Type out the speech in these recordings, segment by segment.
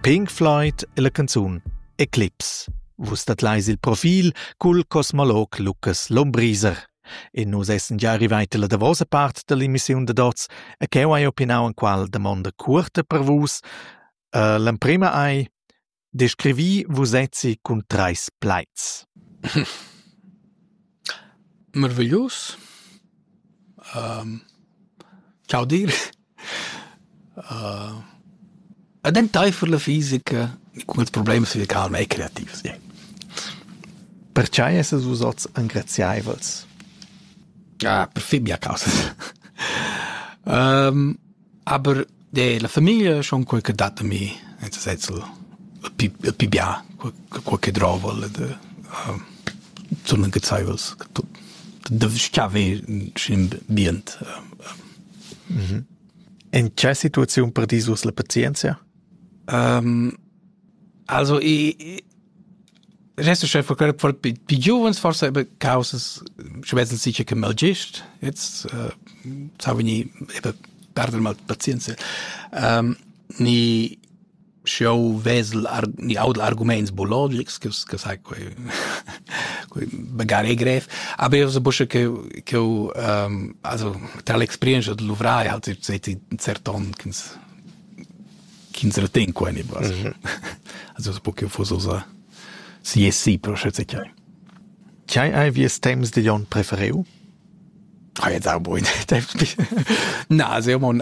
Pink Floyd è la canzun Eclipse. Vus tadlais il profil cul cosmolog Lucas Lombriser. E nus essan già arrivati alla davosa part dell'emissiun da Dots e cheu hai opinau en qual damonda curta per vus. Uh, l'emprema ei Descrivi vusezzi cun treis plaids. Meraviglius. Chaudir. ed enteifer la fisica cun ils problems fisical e creativs. Yeah. Pertgei essas vus oz engraziaivels? Ah, per fin mia causa. um, Aber de la famiglia schon quel che dat a mi, nel senso il pi il pi bia quel quel che drova le de uh, sono gezeivels tut de schave in ambient uh, In che situazione perdisus la pazienzia? Um, also i Rest chef for for pi giuvens forse aber causas schwesel sicher che mal gest jetzt äh, sa veni eben perdere mal pazienza ähm, ni show vesel ar, ni audel arguments biologics che che sai quei quei magari grev aber io so busche che che ähm, also tra l'experienza de luvrai halt seit un certon chins ch'ins retegn qua en il bras. Mm -hmm. Also es poche fososa si e si però schätze chai. Chai hai vies temps de Jon prefereu? Ai jetzt auch boin. Na, se mon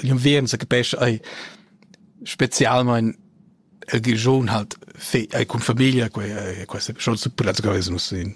jon veren se capesc ai specialmein el gion halt fe ai con familia quei questa schon su prazzo che nus in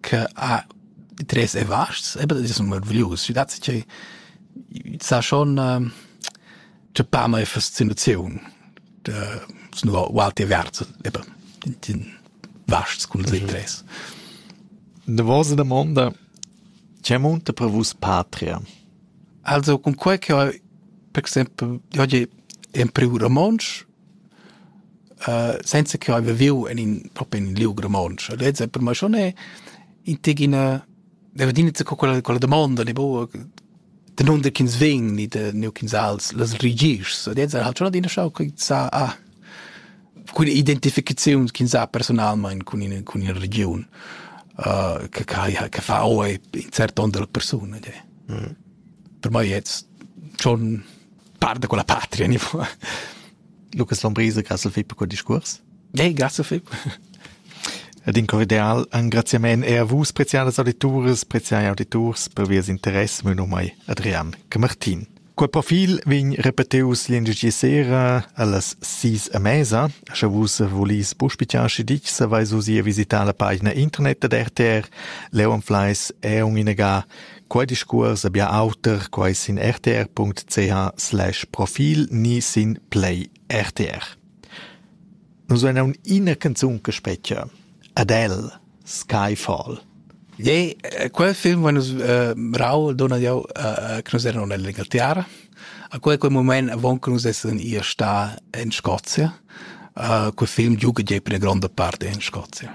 che ha interess e vasts, aber das ist meraviglius. Ich dachte che sa schon äh, c'è pa mai fascinazione de nur walti verso eben den, den vasts con mhm. interess. Da vostra domanda c'è molto per vos patria? Also con quel che ho per esempio oggi è un privo romansch Senza che haiva viu en in propi in liug romontsch. Lez per me schon è in teg ina deva adina co quella quella domanda ne boa danunder ch'ins vegn ni da neu ch'ins als las rigischs. Lez ha schon adina schau che sa ah cun identificaziuns ch'ins ha personalmein cun ina cun ina regiun uh, che che che fa oi in cert ton della persuna. Per me jetzt schon Parta con la patria, ni Lucas Lombriser, grazie Philipp per quel discurs. Hey, grazie Philipp. Ed in cordial engraziament er a vus, preziadas auditoris, preziai auditors, per vies interesse, mio nome è Adrian Camartin. Quel profil vegn repeteus lingici sera allas sis a mesa. Sche vus volis puspitiasci dich, se vais usi a visitar la pagina internet ad RTR, Leonfleiss, Eung inaga, Quei discuors ha bia auter quei sin rtr.ch/profil ni sin Play RTR. Nus vein aunc ina canzun che spetga. Adele, Skyfall. Jei, eh, quel film va nus eh, rau dona jau eh, che nus eran nell'Inghilterra. A quel quel moment avon che nus essen ir sta in Scozia. Uh, quel film giuga jei per la gronda parte in Scozia.